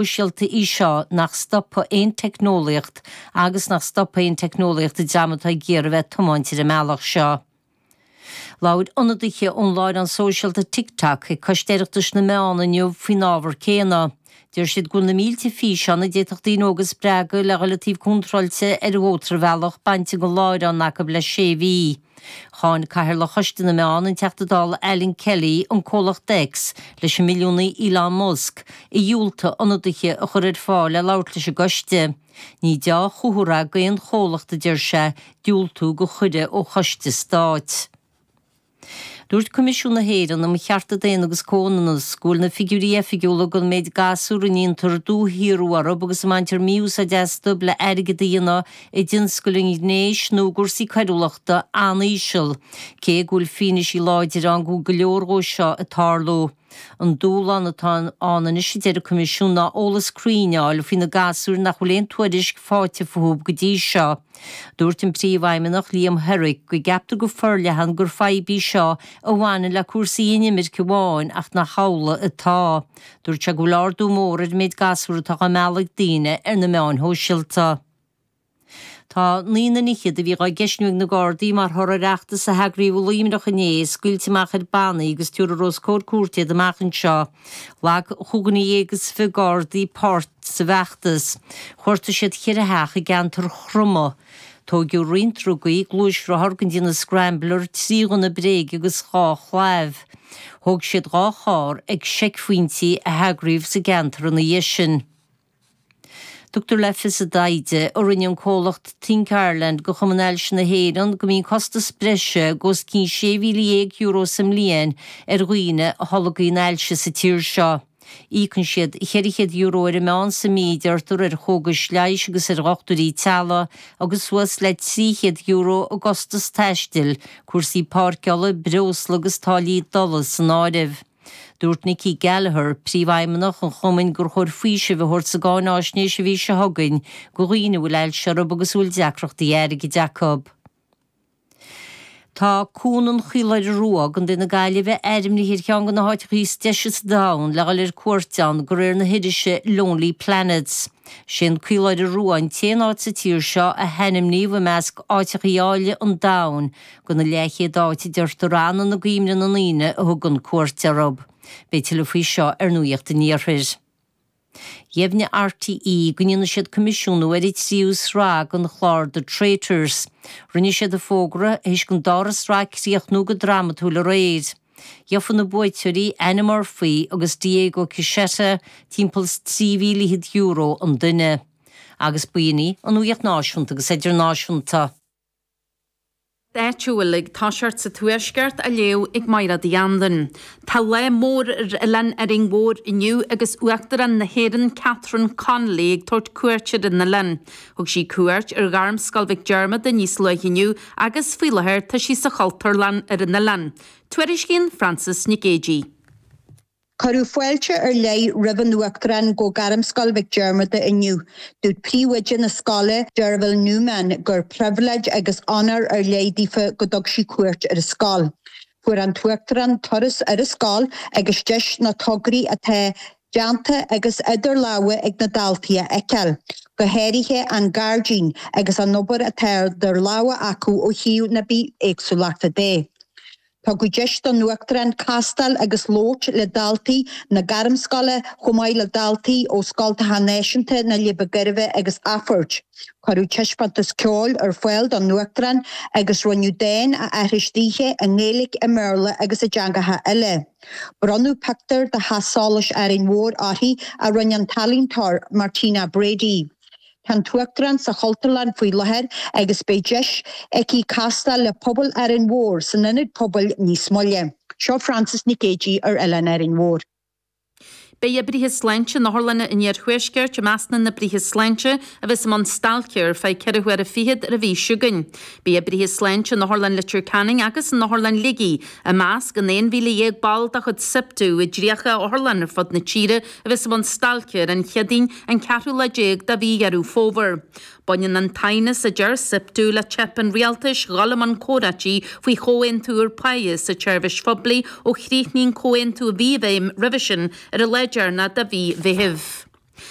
sóisialta í seo, nach stopfaidh aon teicneolaíocht agus nach stopfaidh aon teicneolaíocht an dream atá ag iarraidh a bheith ag tiomáint ar an mbealach seo. Labhair ionadaithe ón láithreán sóisialta TikTok ag Coiste Oireachtais na Meán inniu faoin ábhar céanna. Deir siad go bhfuil na mílte físeán a d'fhéadfadh daoine óga a spreagadh le dhul ar an taobh contráilte ar an mhótarbhealach bainte den láithreán acu le sé mhí. Cháin Cathaoirleach Choiste na Meán, an Teachta Dála Alan Kelly, an comhlacht X leis an milliúnaí Elon Musk, a dhiúltaigh ionadaithe a chur ar fáil le labhairt leis an gcoiste. Ní deá chomhartha d'aon chomhlacht, a deir sé, diúltú do chuireadh ó choiste stáit. Dúirt Coimisiún na hÉireann um Chearta Daonna agus Comhionannas go bhfuil na figiúirí oifigiúla don méid gasúr a ndéantar dúshaorú orthu agus a mbaintear mí-úsáid astu le airgead a dhéanamh i dtionscal an ghnéis nó i gcúrsaí coiriúlachta an-íseal, cé go bhfuil fianaise láidir ann go bhfuil go leor dhó seo ag tarlú. An dúshlán atá ann anois, a deir an Coimisiún, ná eolas cruinn a fháil faoi na gasúir nach bhfuil aon tuairisc faighte fúthu go dtí seo. Dúirt an Príomhfheidhmeannach, Liam Herrick, go gceaptar go forleathan gur fadhb í seo a bhaineann le cúrsaí inimirce amháin ach nach amhlaidh atá. Dúirt sé go bhfuil ardú mór ar an méid gasúr atá á mealladh ag daoine ar na meáin shóisialta. Tá naonúr fear a bhí dhá gceistniú ag na Gardaí mar thoradh ar fheachtas a heagraíodh i Luimneach inné scaoilte amach ar bannaí agus tiúrfar os comhair cúirte iad amach anseo. Ghlac cúig dhuine dhéag is fiche Gardaí páirt sa bhfeachtas. Chuartaigh siad ceithre theach i gceantar Chromadh. Tóigeadh roinnt drugaí, gluaisrothar den chineál Scrambler, trí ghunna bréige agus dhá chlaíomh. Thóg siad dhá charr ag seicphointí a heagraíodh sa gceantar ina dhiaidh sin. Tugtar le fios i dtaighde a rinne an comhlacht Think Ireland do Chumann Ailse na hÉireann go mbíonn costas breise de os cionn €16,000 sa mbliain ar dhaoine a tholgaíonn ailse sa tír seo. Íocann siad €400 ar an meán sa mí, a deirtear, ar chógais leighis agus ar dhochtúirí teaghlaigh agus suas le €300 i gcostas taistil, cúrsaí páirceála, breosla agus táillí dola san áireamh. Dúirt Nikki Gallagher, Príomhfheidhmeannach an Chumainn gur chóir faoiseamh a thabhairt sa gcáináisnéis an mhí seo chugainn go dhaoine a bhfuil ailse orthu agus a bhfuil deacrachtaí airgid acu. Tá Cuan an Chaoláire Rua, Co na Gaillimhe, ainmnithe ar cheann de na háiteacha is deise sa domhan le dhul ar cuairt ann, de réir na hirise Lonely Planet. Is é an Caoláire Rua an t-aon áit sa tír seo a hainmníodh i measc Áiteachaí Áille an Domhain, Go na leathchéad áit, a deirtear, a fhanann i gcuimhne na ndaoine a thugann cuairt orthu. Beidh tuilleadh faoi seo ar Nuacht an Iarthair. Dheimhnigh RTÉ go ndéanfaidh siad coimisiúnú ar an tríú sraith den chlár The Traitors. Rinne siad an fógra tar éis don dara sraith críochnú go drámatúil aréir. Gheofa na buaiteoirí, Annie Murphy agus Diego Kishetta, timpeall trí mhíle fhichead euro an duine. Agus b'in í an nuaíocht náisiúnta agus idirnáisiúnta. d'áit ar bith uilig. Tá Nuacht an Tuaiscirt á léamh ag Máire de Andain. Tá lá mór ar Oileán Árainn Mhór inniu agus Uachtarán na hÉireann Catherine Connolly ag tabhairt cuairt ar an oileán. Thug sí cuairt ar Ghairmscoil Mhic Diarmada níos luaithe inniu agus, faoi láthair, tá sí sa Chultúrlann ar an oileán. Tuairiscíonn Frances Nic Géidigh. Cuireadh fáilte ar leith roimh an Uachtarán go Gairmscoil Mhic Diarmada inniu. Dúirt príomhoide na scoile, Deirbhile Newman, gur pribhléid agus onóir ar leith daofa go dtug sí cuairt ar a scoil. Fuair an tUachtarán turas ar a scoil agus deis na tograí atá déanta agus idir lámha ag na daltaí a fheiceáil, go háirithe an gairdín agus an obair atá idir lámha acu ó thaobh na bithéagsúlachta de. Tugadh deis don Uachtarán castáil agus labhairt le daltaí na gairmscoile chomh maith le daltaí ó scoltacha náisiúnta na Leidhbe Gairbhe agus Athphoirt. Cuireadh taispeántas ceoil ar fáil don Uachtarán agus rinneadh dán a aithris daoithe i nGaeilic, i mBéarla agus i dteangacha eile. Bronnadh pictiúr de Theach Solais Árainn Mhór uirthi a rinne an t-ealaíontóir Martina Brady. Tá an tUachtarán sa Chultúrlann faoi láthair agus beidh deis aici castáil le pobal Árainn Mhór san Ionad Pobail níos moille. Seo Frances Nic Géidigh ar Oileán Árainn Mhór. Beidh oibrithe sláinte in otharlanna an Iarthuaiscirt i measc na n-oibrithe sláinte a bheas i mbun stailce ar feadh ceithre huaire fichead ar an mhí seo chugainn. Beidh oibrithe sláinte in Otharlann Leitir Ceanainn agus in Otharlann Shligigh i measc an 11,000 ball de chuid Siptu i dtríocha otharlann ar fud na tíre a bheas i mbun stailce ar an Chéadaoin an ceathrú lá déag de mhí Dheireadh Fómhair. Baineann an t-aighneas, a deir Siptu, le teip an rialtais dhul i mbun comhráití faoi chomhaontú úr páighe sa tseirbhís phoiblí ó chríochnaigh an comhaontú a bhí i bhfeidhm roimhe sin ar an lá deireanach de mhí Mheithimh.